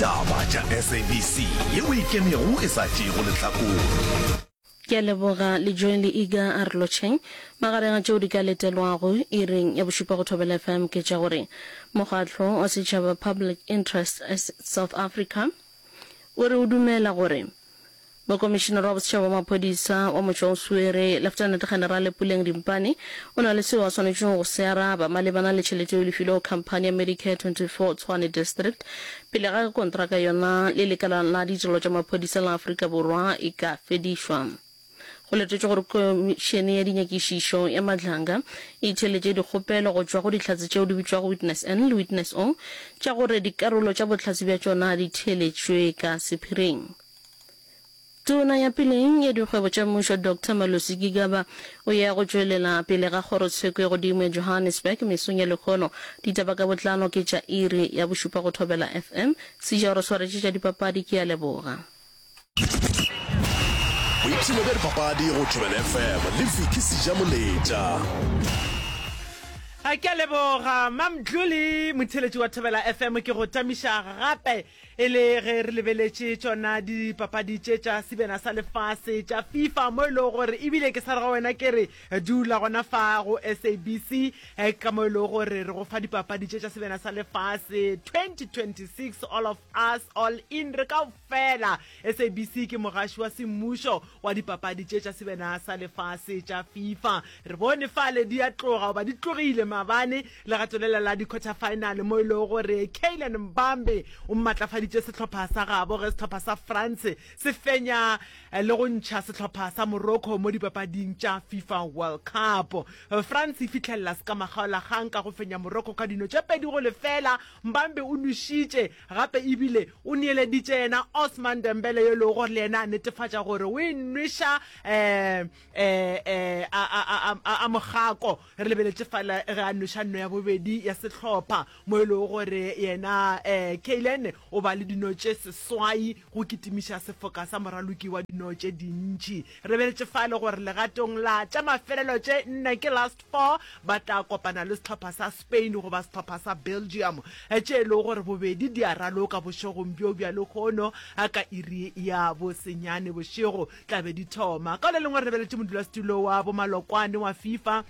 Taba tša SABC ye o ikemego e sa tšeego lehlakore. Ke a leboga le Joy le Iga a re lotšheng. Magareng a tšeo di ka letelwago iring ya bošupa go Thobela FM ke tša gore Mokgatlo wa Setšhaba Public Interest South Africa o re o dumela gore Mokomišinara wa Bosetšhaba wa Maphodisa wa motse wa Usuere, Leftenete Generale Puleng Dimpane, o na le seo a swanetšego go se araba malebana le tšhelete yeo e lefilwego khamphani ya Medicare 24 Tshwane District pele ga ge kontraka yona le lekala la ditirelo tša maphodisa la Afrika Borwa e ka fedišwa. Go letetšwe gore Komišene ya Dinyakišišo ya Madlanga e theeletše dikgopelo go tšwa go Dihlatse tšeo di bitšwago Witness N le Witness O tša gore dikarolo tša bohlatse bja tšona di theeletšwe ka sephiring. Tona ya Peleng ya Dikgwebo tša Mmušo Doctor Malusi Gigaba o ya go tšwelela pele ga kgorotsheko e godimo ya Johannesburg mesong ya lekgono. Ditaba ka botlalo ke tša iri ya bošupa go Thobela FM. Sija o re swaretše tša dipapadi, ke a leboga. Boipshino bja dipapadi go Thobela FM le Vicky Sija Moletša. Ke a leboga Mmamdluli, motheeletši wa Thobela FM. Ke go tamiša gape. E le ge re lebeletše tšona dipapadi tše tša sebena sa lefase tša FIFA mo e lego gore ebile ke sa re go wena ke re dula gona fa go SABC eh, ka mo e lego gore re go fa dipapadi tše tša sebena sa lefase 2026 all of us all in re ka fela SABC ke mogaši wa semmušo wa dipapadi tše tša sebena sa lefase tša FIFA re bone fale di a tloga goba di tlogile mabane Legato lela la dikhothafaenale mo e lego gore Kylian Mbappe o mmatlafaditše sehlopha sa gabo ge sehlopha sa France se fenya eh, le go ntšha sehlopha sa Morocco mo dipapading tša FIFA World Cup. France e fitlhelela sekamagaolagang ka go fenya Morocco ka dino tše pedi go lefela. Mbappe o nwešitše gape ebile o neeleditše yena Ousmane Dembele yo e lego gore le yena a netefatša gore o e nweša eh, eh, eh, a, a, a, a, a mogako Re lebeletše fela ge a nweša nno ya bobedi ya sehlopha mo e lego gore yena Kaylen o ba le dino tše seswai go kitimiša sefoka sa moraloki wa dino tše dintši. Re lebeletše fale gore legatong la tša mafelelo tše nne ke last four ba tla kopana le sehlopha sa Spain goba sehlopha sa Belgium tše e lego gore bobedi di a raloka bošegong bjo bja lehono ka iri ya bosenyane bošego. tla be di thoma. Ka le lengwe re lebeletše modulasetulo wa bomalokwane wa FIFA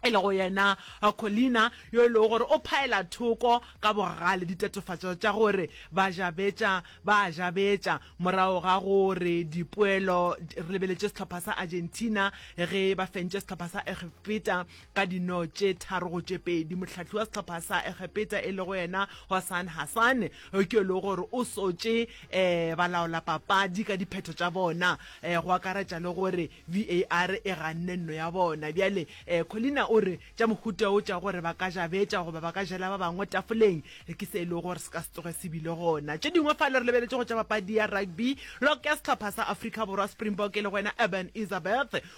e lego yena Collina yo e lego gore o phaela thoko ka bogale ditatofatšo tša gore bajabetša ba a jabetša morago ga gore dipoelo re lebeletše sehlopha sa Argentina ge ba fentše sehlopha sa Egipeta Ka dino tše tharo go tše pedi, mohlahli wa sehlopha sa Egepeta e lego yena Hossan Hassan ke yo lego gore o sotše um balaolapapadi ka diphetho tša bona, um go akaretša le gore VAR e ganne nno ya bona. Bjale um Collina o re tša mohuta wo tša gore ba ka ja betša goba ba ka jela ba bangwe tafoleng ke se e lego gore se ka se tloge se bile gona. Tše dingwe fa le re lebeletše go tša papadi ya rugby, lok ya sehlopha sa Afrika Borwa Springbok e lego yena Urban Isabeth,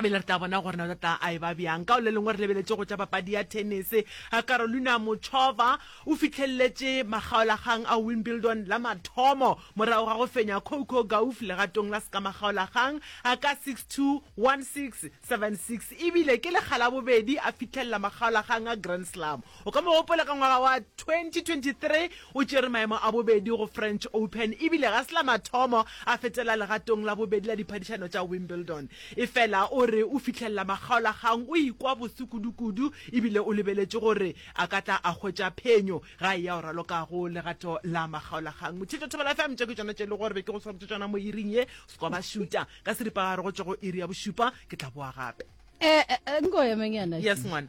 bele re tla bona gore na o tla a e ba bjang ka o le lengwe re lebeletse go tša papadi ya tennis a carolina mochova o fitlheleletše makgaolakgang a wimbledon la mathomo morago ga go fenya coco gauf legatong la seka makgaolakgang a ka 621676 ebile ke lekga la bobedi a fitlhelela makgaolakgang a grand slam O ka mo gopola ka ngwaga wa 2023 o tšere maemo a bobedi go French Open e bile ga se la mathomo a fetela legatong la bobedi la diphadišano tša Wimbledon. Efela o re o fihlelela makgaolakgang o ikwa boso kudukudu e bile o lebeletše gore a ka tla a hwetša phenyo ga e ya o ralokago legato la makgaolakgang. Motšheto Thobela FM, tše ke tšona tše e le gore be ke go swaretše tšona mo iring ye, Skoba Shuta. Ka seripagare go tšwa go iri ya bošupa ke tla boa gape. Eh, eh, eh, nko emenyana. Yes, ngwana.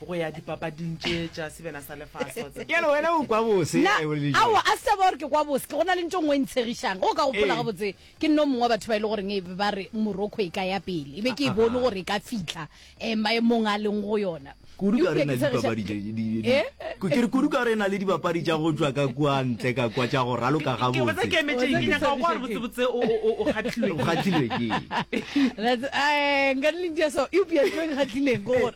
go ya dipapading tše tša sebjana sa lefase. Ke a re wena o kwa bose Na, e o le dijong. aowa a se taba gore ke kwa bose ke go na le ntho e nngwe e ntshegišang go ka gopola Ee. gabotse ke nne o mongwe wa batho ba e le goreng e be ba re morocco e ka ya pele e be ke e bone Ahaha. gore e ka fitlha um maemong a leng go yona Kudu ka Eupša re na ke le tshegiša- dipapadi tše- di- di- di- Eh? Ku- ke re kudu ka re na le dibapadi tša go tšwa ka kua ntle ka kwa tša go raloka Ke botsa gabotse ke emetšeng ke nyaka go kwa gore botsebotse o- o- o- o kgatlilwe o ke eng. kgatlilwe ke eng? That's- eh, nka le ntša so eupša ntho e nkgatlhileng ke gore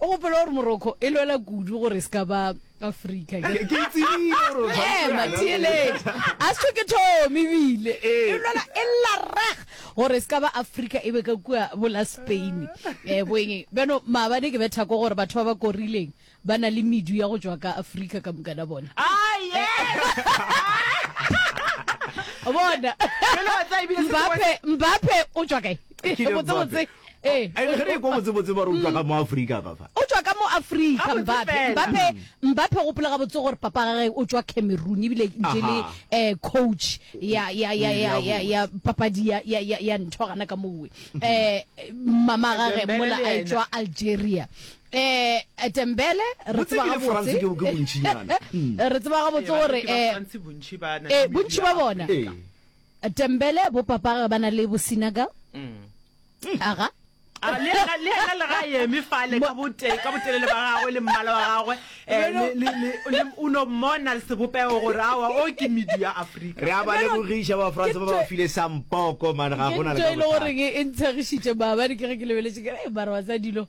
O gopola gore Morocco e lwela kudu gore e se ka ba Afrika. Ke itsebile gore o tshwanetse Ema, yana theeletše. pele. A se ke thome ebile. Ee. E lwela e lla rag gore e se ka ba Afrika e be ka kua bola Spain. Eh, boeng. Bjano, maabane ke betha ko gore batho ba ba korileng ba na le medu ya go tšwa ka Afrika ka mokana bona. Ah, bona Jwale wa tsaya ebile se Mbappe Mbappe o tšwa kae Kylian Mbappe. botsebotse Ee, And ge re ekwa botsebotse ba re o tšwa ka mo Afrika ka fa. O tšwa ka mo Afrika Gabotse Mbappe. fela. Mbappe Mbappe gopola gabotse gore papa ga ge o tšwa Cameroon ebile ntše le Aha. eh coach ya ya ya ya ya, ya papadi ya ya ya, ya ntho gana ka mowe. Eh mama ga ge Dembele mola le a yena. tšwa Algeria. Eh Dembele re Botse tseba ebile France ke- ke gabotse. bontšinyana. Re tseba gabotse gore eh eh bontši ba bona Ee. Tembele, bo papage ba na le bo sinaga. Aga. A, le yena le yena le ga a eme fale ka bote ka botelele ba gagwe le mmala wa gagwe eh, le le le le- o no mmona sebopego gore awa o ke medu ya afrika re a ba lebogiša ba france ba ba file sampoko mane ga ke gona le ntho ka e le bothata goreng e ntshegišitše maabane ke ge ke lebeletše ke re "Ee, mara wa tsa dilo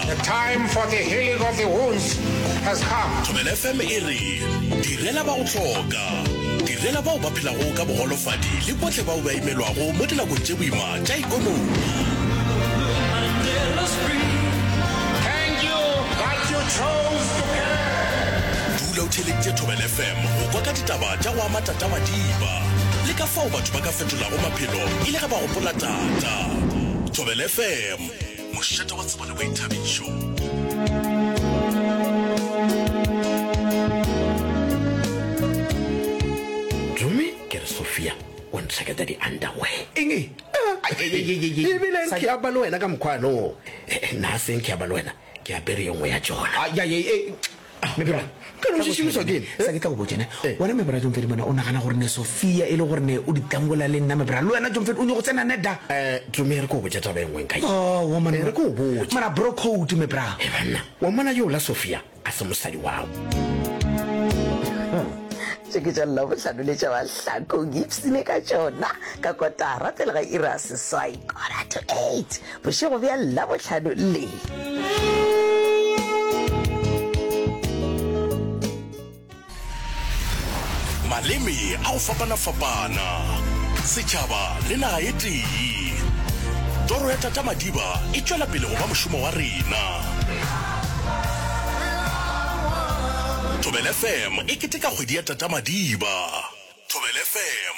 The time for the healing of the wounds has come. Thobela FM e re, Direla ba go hloka. Direla bao ba phelago ka bogolofadi le bohle bao ba imelwago mo dinakong tše boima tša ekonomi. Dula o theeleditše Thobela FM go kwa ka ditaba tša go ama tatagadiba le ka fao batho ba ka fetolago maphelo e le ge ba gopola tata. Thobela FM. Mošate wa tsebo le boithabišo. Dume ke re Sophia o ntlheketa di-underwear. Eng e? Ayayayayay. Ebile Sa- ke aba le wena ka mokgwano. Eh, eh, Nna a seng ke aba le wena, ke apere yo nngwe ya tšona. Ayayay, eh, Ah, Mebra, ka no šešimišwa ke eng? Sa ke tla go botša ne. Eh. Wena Mebra John Fedi mona o nagana gore ne Sofia e le gore ne o di tangola le nna Mebra. Le wena John Fedi o nyoko tsena ne da. Eh, Tumi re ko botša taba e nngwe nka. Oh, wa mona. Eh, re ko botša. Mara bro code Mebra. Eh, banna, wa mona yo la Sofia a se mosadi wao. tše ke tša labohlano le tša bahlakong ipsene ka tšona ka kotara pele ga ira seswai kora to eight Bošego bja Labohlano le. Maleme a go fapana-fapana, setšhaba le naga e tee. Toro ya Tata Madiba e tšwela pele go ba mošomo wa rena. Thobela FM e keteka kgwedi ya Tata Madiba. Thobela FM.